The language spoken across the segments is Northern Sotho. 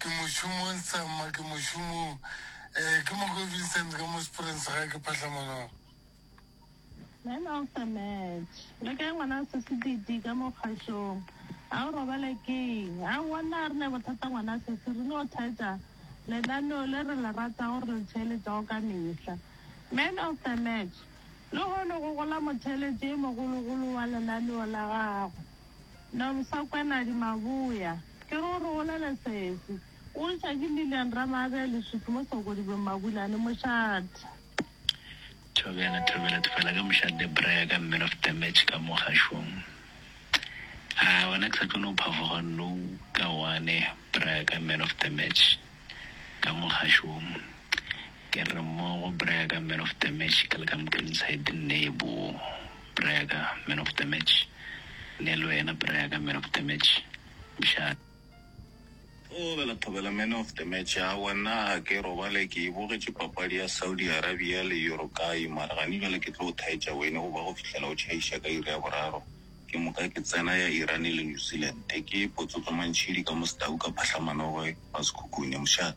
Ke mošomong sa mma ke mošomong eh, ke mo go Vincent ka mo Springs ga ke phahla maloba. Man of the match le kae ngwana se sedidi ka mo kgašong a o robale keng a wonna re ne bothata ngwana se se re no thetsa lenaneo le re le rata gore le theeletsago ka mehla man of the match le gone go gola motheeletsi e mogologolo wa lenaneo la gago Na Mosakwanadi Maboya, ke re o re bolele sese. O ntšwa ke Lilian Ramaabea Leswiki mo Sokodibeng Mabulane, mošate. Thobela, Thobela Thobela ka mošate bra ya ka man of the match ka mo gašong. A gona ke sa tlo no phafoga no ka one bra ya ka man of the match ka mo gašong. Ke re mmogo bra ya ka man of the match ke le ka mo Queenside nne e boo. Brega, Man of the Match, le le wena Brega, Man of the Match, mshana. Thobela, Thobela, Man of the Match, aowa nna ga ke robale, ke e bogetše papadi ya Saudi Arabia le Uruguay, mara gane bjale ke tlo go thaetša wene go ba go fihlela o tšhaiša ka iri ya boraro, ke moka ke tsena ya Iran le New Zealand, ke potsotso mantšhidi ka mosdau ka phahlamanogoe wa sekhukhune, mshana.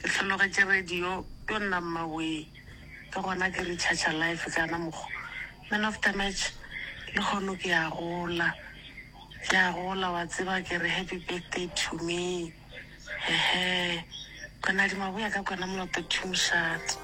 Ke hlologetše radio tonna mmawee ke gona ke recharger life ka na mokgo man of the match le kgono ke a gola ke a gola wa tseba ke re happy birthday to me he he kona di maboya ka kona moloto to mshat.